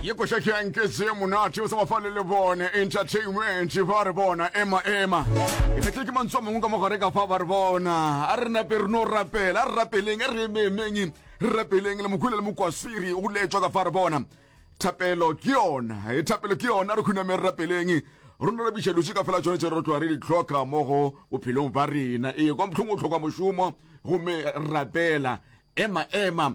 ye koša ke yanke se monate o sa bafale le bone entertainment ba re bona ema ema e fetle ke mantswe a mangwe ka mogare ka fa ba re bona a re nape re no rapela a re rapeleng a re ememeng re rapeleng le mokhule le mokwasiri o letšwa ka fa re bona thapelo ke yona e thapelo ke yona re khuname re rapeleng rona re biša lose ka fela tsone tse re tloa re di tlhoka mo go bophelong ba rena ee kwa motlhong o tlhoka mošomo gomme rapela ema ema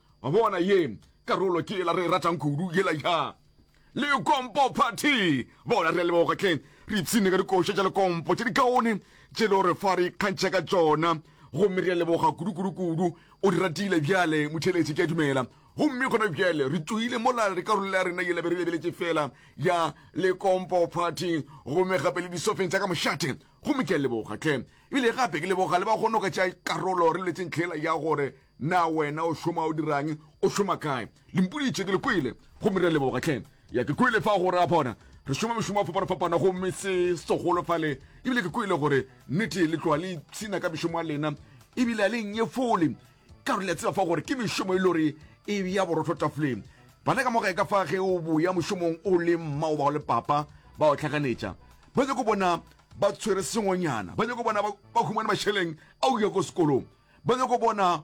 Wa bona, ye karolo ke yela re e ratang kudu, yela ya Lekompo Party. Bona, re a leboga hle, re ipshine ka dikoša tša Lekompo tše dikaone tše le o re fa re ikgantšha ka tšona. Gomme re a leboga kudu, kudu, kudu. O di ratile bjale, motheeletši, ke a dumela. Gomme gona bjale re tšoile mola re karolo ya rena yela be re lebeletše feela ya Lekompo Party, gomme gape le disofeng tša ka mošate. Gomme ke a leboga hle. Ebile gape ke leboga le ba go noka tša karolo re letseng hle yela ya gore. Na wena o šoma, o dirang, o šoma kae? Limpudi tše ke le kwele, gomme re a leboga tlhe. Ya ke kwele fa go ra bona re šoma mešomo a fapana-fapana, gomme se segolo fa le, ebile ke kwele gore nnete le tloa le ipshina ka mešomo a lena, ebile a le nnyefole, ka gore le a tseba fa gore ke mešomo e lore e ya borotho tafoleng. Bana ka mo gae ka fa ge o boya mošomong o le mma o bao le papa ba o tlhakanetša, ba nyako bona ba tshwere sengwenyana, ba nyako bona ba humane mašeleng a o ya ko sekolong. Ba nyaka go bona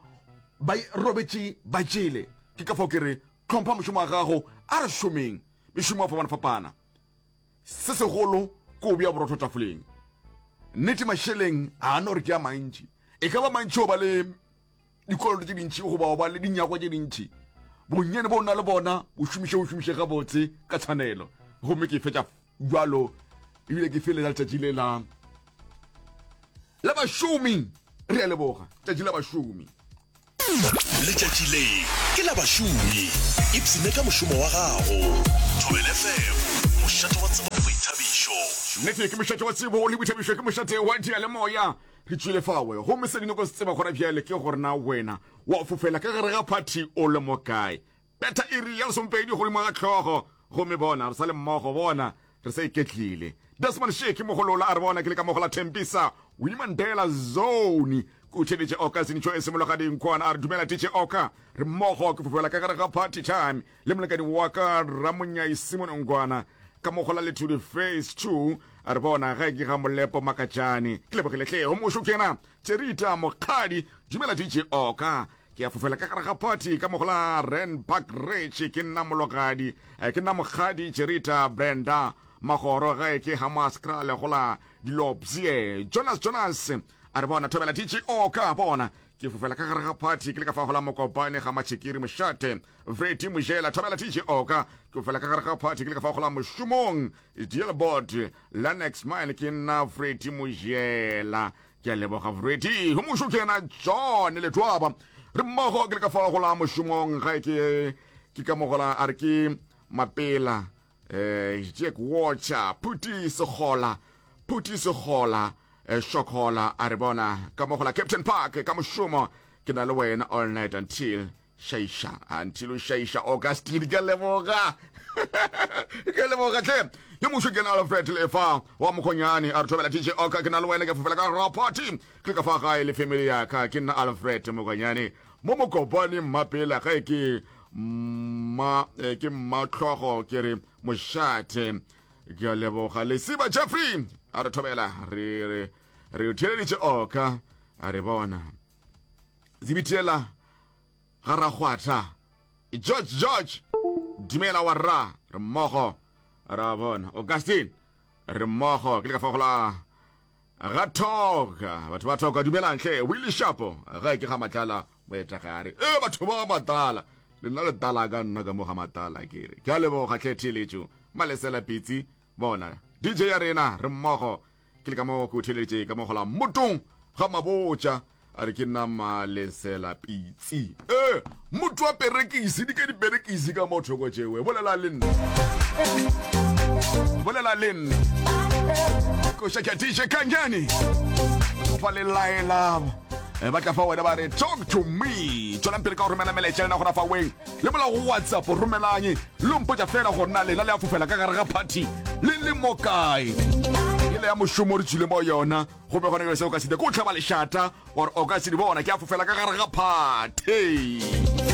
ba robetše ba jele. Ke ka fao ke re, Hlompha mošomo wa gago. A re šomeng mešomo ya go fapana-fapana. Se segolo ke go bea borotho tafoleng. Nnete, mašeleng ga a no re ke a mantši. E ka ba mantši o ba le dikoloto tše dintši goba o ba le dinyakwa tše dintši. Bonnyane bo o na le bona bo šomiše o šomiše gabotse ka tshwanelo. Gomme ke fetša. bjalo ebile ke felela letšatši le la la bašomi re a leboga tšatši la bašomi letšatši le ke la bašomi ipsene ka mošomo wa gago thobele fm mošate wa tsebo le boithabišo nete ke mošate wa tsebo le boithabišo ke mošate wa dia le moya re tšwile fawe gomme se dinoko se tseba gona bjale ke gorena wena wa fofela ka gare ga phathi o le mo kae Betha iri ya lesomepedi godimo ga hlogo, gomme bona, re sa le mmogo, bona, re sa iketlile. Desmond Shiki, mogolola, a re, Bona, ke le ka mo go la Tembisa, Winnie Mandela Zone. Ke o theeditše oka, Sinitsho e simologa dinkwana. A re, Dumela, Titše Oka. Re mmogo, ke fofela ka gare ga party time, le molekane wa ka, Ramonyai Simon Ngwana, ka mo go la Lethudi Phase Two. A re, Bona, ge ke ga Molepo Makatšane. Ke lebogile hle, o mošo ke na. Tserita, Mokgadi, Dumela, Titše Oka. Ke ya fofela ka gare ga party ka mogola Rand Park Ridge ke nna mologadi eh, ke nna mokgadi Jerita Brenda magoro ge ke Hamas Krale gola Dilopsie Jonas Jonas a re bona thobela DGO ka bona ke fofela ka gare ga party ke le ka fa gola mokopane ga matšhikiri mošate vredi mojela thobela tg oka ke fofela ka gare ga party ke le ka fa gola mošomong dealbord lanex mine ke nna vredi mojela ke a leboga morwedi go mošo ke yena john letwaba re mmogo ke le ka fa go la mošomong ga ke ke ka mogola a re ke mapela eh jack watcher phuti segola phuti segola eh, shokola a re bona ka mogola captain park ka mošomo ke na le wena all night until šaiša until o šaiša o ka stile ke leboga ke leboga tle ke mušo ke na alfred lefa wa mokgonyane a re thobela dj oka ke na le wena ke fofela ka rapati ke ka fa gae le family ya ka ke nna alfred mokgonyane mo mokopane mmapela ga e ke mma eh, ke mmatlhogo ke re mošate ke a leboga lesiba jeffrey a re thobela re re re theleditše oka a re bona Zibitela ga Rakgwatha. George, George! Dumela wa rra, re mmogo. Ra bona. Augustine, re mmogo. Ke le ka fa gola ga thoka. Batho ba thoka, dumelang hle. Willie Shapo, ga ke ga matlala moetagare. E, batho ba matlala. Lena le tala ka nna ka mo ga matlala kere. Ke a leboga hle theeletšo. Malesela pitsi. Bona, DJ ya rena, re mmogo. Ke le ka mo ke o theeleditše ka mo gola mmotong ga mabotša a re ke nna malesela pitsi e motho wa perekisi di ke diperekisi ka mo thoko tšewe bolela le nna bolela le nna koša ke dj kanyane fa le laela eh, ba tla fa wena ba re talk to me tswelang pele ka go romela melaetša lena gona fa weng le molago whatsapp romelanye Lo mpotša fela gore na lena le a fofela ka gare ga phathi le le mo kae. Ele ya mošomo re tšwile mo yona gomme gona bjale se o ka se dira ke o hlaba lešata gore o ka se di bona ke a fofela ka gare ga phathi.